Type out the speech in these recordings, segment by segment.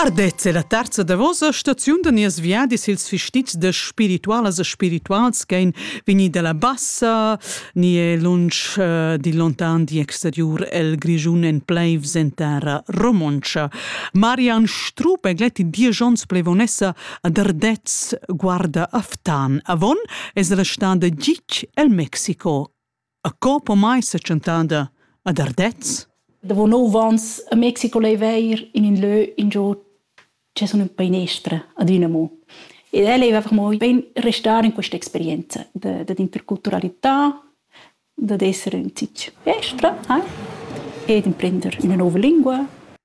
Ardez è la terza davosa staziun da nies viadis ils fistits de spiritualas e spirituals che ein vegni dalla bassa ni è lunsch uh, di lontan di exteriur el Grischun en pleivs en terra romontscha. Marian Strup è gletti dieci onns plevonessa ad Ardez guarda Aftan. Avon es restà de Gic el Mexico. A co pomai sa tschentada ad Ardez? Davo nov ans a Mexico lei veir in in lö ingio che sun ün painestra ad üna mo. Ed el ei einfach mo ben restar in questa experienza da, da interculturalità, dad esser ün zic estra eh? e d'imprender üna nova lingua.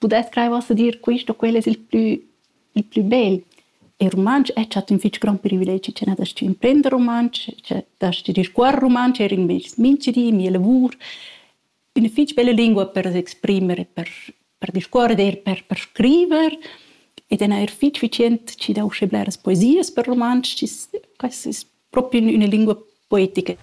pudess crair uossa dir quist o quel es il plü il plü bel. Il rumantsch es stat ün fich grond privilegi cha n'hast stü imprender rumantsch, cha d'hast discuorre rumantsch eir in meis minchdi, mia lavur. Üna fich bella lingua per s'exprimer, per per discuorrer, eir per per scriver ed eir fich efficient chi dà usche bleras poesias per rumantsch. Quai es propi in üna lingua poetica.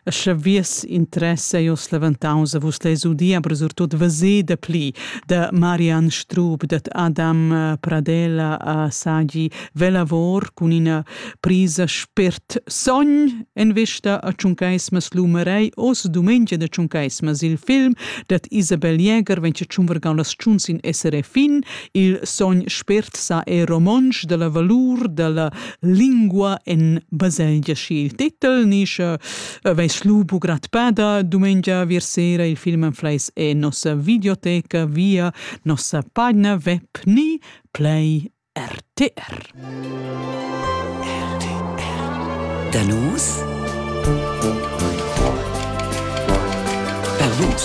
E sche vies interess ei oz leventaus a vus les udia, per surtut vesida pli da Marian Strub, dat Adam eh, Pradella a Sagi velavor cun ina prisa spert sogn en vista a Tschuncaismas Lumerei oz dumengia da Tschuncaismas il film dat Isabel Jäger venche tschunvergau las tschunz in SRF fin Il sogn spert sa è romontsch dalla valur dalla lingua en baselgia schi il titel nisce veis lupo gratpada dumengia vir sera il film anfleis e nossa videoteca via nossa pagina web ni play RTR. RTR. Danus Danus